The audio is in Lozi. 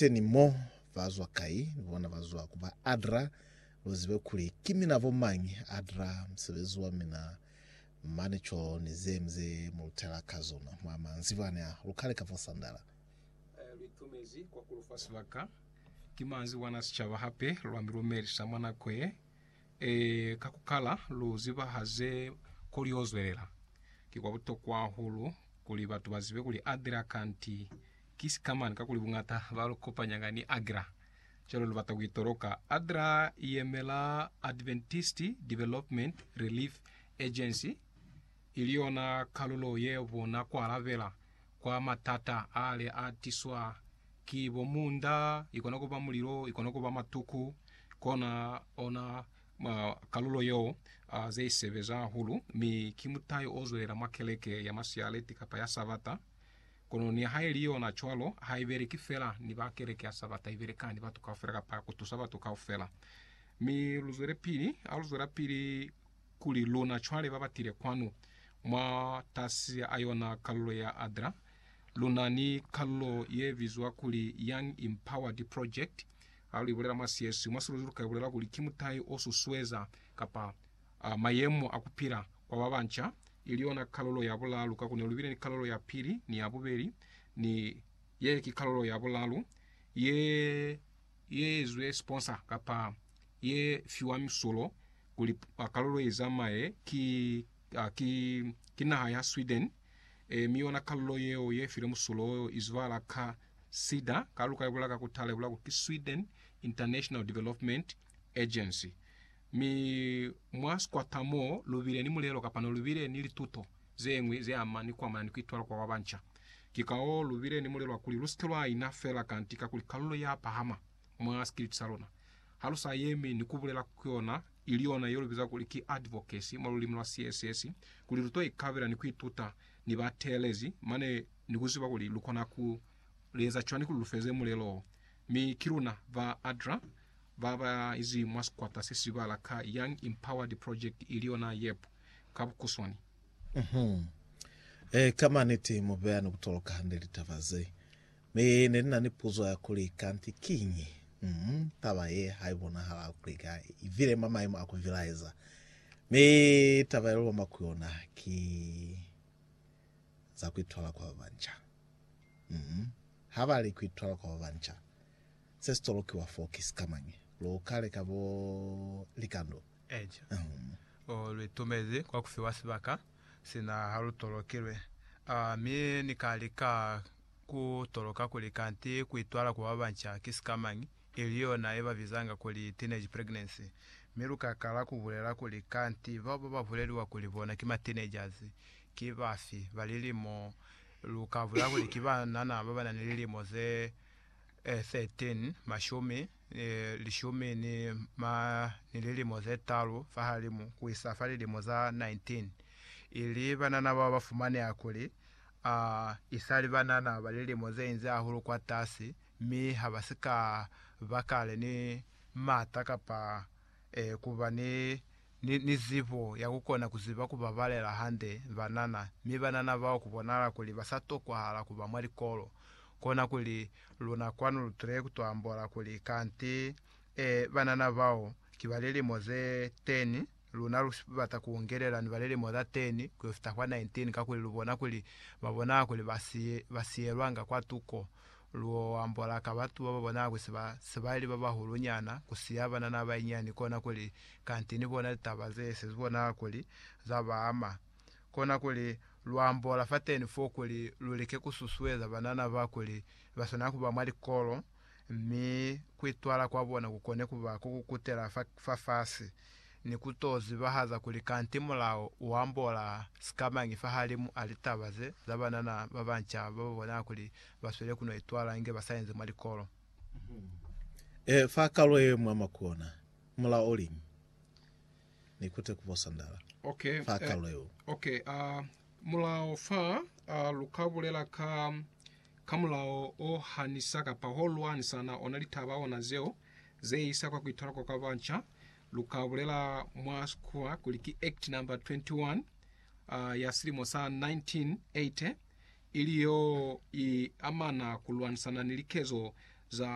Teni mo, ba zwa kai? Ni bona ba zwa ku ba Adra. Lu zibe kuli ki mina bo mañi, Adra, musebezi wa mina mane co ni ze mi ze mu lutela ka zona mwa manzibani a lukale ka fo Sandala. Lu itumezi kwa ku lu fa sibaka. Ki manzibwana a sicaba hape, lwa mi lumelisa mwa nako ye. Ee, ka ku kala, lu ziba ha ze koli yo zwelela. Ki kwa butokwa hahulu kuli batu ba zibe kuli Adra kanti Ki sikamani kakuli buñata ba lu kopanyanga ni ADRA cwale lu bata ku i toloka. ADRA i yemela Adventist Development Relief Agency, ili yona kalulo ye bona ku alabela kwa matata a le a tiswa ki bo munda, i kona ku ba mulilo, i kona ku ba matuku. Kona ona kalulo yeo ze i sebeza hahulu, mi ki mutai o zwelela mwa keleke ya masialeti kapa ya Sabata. Kono nihaili yona cwalo, ha i beleki fela ni ba keleke ya Sabata, i beleka ni batu kaufela kapa ku tusa batu kaufela. Mi lu zwelepili, ha lu zwelapili kuli luna cwale ba ba tile kwanu, mwa tasi a yona kalulo ya ADRA, lu na ni kalulo ye bizwa kuli Young Empowered Project, ha lu i bulela mwa Sieswi, mwa Siluzulu ka i bulela kuli ki mutai o susueza kapa a mayemo a ku pila kwa ba banca, ili yona kalulo ya bulalu, kakuli lu bile ni kalulo ya pili ni ya bubeli, ni ye ki kalulo ya bulalu, ye, ye ezwe sponsor, kapa ye fiwa misulo kuli kalulo ye zamaye, ki, ki, ki naha ya Sweden, e, mi yona kalulo yeo ye filwe musulo wo izwala ka sida, kalulo ka ibula ka kutala, ibula kuli ki Sweden International Development Agency, mi mwa sikwata mo lu bile ni mulelo kapa no lu bile ni lituto ze ñwi ze ama ni ku amana ni ku itwala kwa ba banca. Ki kao lu bile ni mulelo wa kuli lu si ke lwa ina fela kanti kakuli kalulo ya pahama mwa sikiliti sa luna, ha lu sa yemi ni ku bulela ku yona, ili yona ye lu biza kuli ki advocacy mwa lulimi lwa CSS, kuli lu to ikabela ni ku ituta ni ba teelezi mane ni ku ziba kuli lu kona ku eza cwani kuli lu feze mulelo wo. Mi ki luna ba ADRA ba ba izi mwa sikwata se si bala ka Young Empowered Project ili yona YEP ka bukuswani. Uhum. Ee, ka maniti mu beya ni ku toloka hande litaba ze. Mi ne ni na ni puzo ya kuli, Kanti kiñi? Uhum, taba ye ha i bonahala kuli ka i bile mwa maimo a ku bilaeza. Mi taba ye lu lomba ku yona ki. za ku itwala kwa ba banca. Mm. Ha ba li ku itwala kwa ba banca, se si tolokiwa foo ki sikamañi? Lu ka leka bo likando. Eja. Mm. O, lu itumezi kwa ku fiwa sibaka, sina ha lu tolokilwe. A, mi Ni ka lika ku toloka kuli kanti ku itwala kwa ba banca ki sikamañi, ili yona ye ba bizanga kuli teenage pregnancy. Mi lu ka kala ku bulela kuli kanti bao ba ba buleliwa kuli bona ki ma teenagers, Ki bafi ba lilimo lu ka bulela kuli ki banana ba ba na ni lilimo ze 13, mashumi, lishumi ni ma ni lilimo ze talu fahalimu ku isa fa lilimo za 19, ili banana bao ba fumaneha kuli a i sa li banana ba lilimo ze inzi hahulu kwatasi mi ha ba si ka ba kale ni m'ata kapa ku ba ni ni, ni zibo ya kukona kuziba kubabalela hande banana, mi banana bao kubonala kuli basatokwahala kuba mwa likolo, kona kuli luna kwanu lutule kutoambola kuli, Kanti, ee, banana bao ki ba lilimo ze teni, luna lubata kuungelela ni ba lilimo za teni kuyofita kwa 19, kakuli lubona kuli babonala kuli basi, basiyelwanga kwa tuko. Luoambola ka batu bababonala kuli seba, sebali babahulunyana kusiya banana bainyiani, kona kuli kanti ni bona litaba ze se bona kuli za ba ama, kona kuli lu ambola fateni fo kuli lu like ku susueza banana ba kuli ba swanela ku ba mwa likolo mi ku itwala kwa bona ku kone ku ba ko ku kutela fa fafasi, ni ku to zibahaza kuli kanti mulao u ambola sikamañi fahalimu a litaba ze za banana ba banca ba ba bona kuli ba sweli ku no itwala inge ba sa inzi mwa likolo. Ee, fa kalo ye mwa makona, Mulao uli, Ni kute ku bo sandala. Ok, Fa eh, kalulo yeo. ok, a mulao fa, a lu ka bulela ka, ka mulao o ha ni sa kapa ho lwa ni sa na ona litaba ona zeo ze isa kwa ku itala kwa kwa banca, lu ka bulela mwa sikuwa kuli ki Act number 21, a, ya silimo sa 1980, ili yo i amana ku lwanisana ni likezo za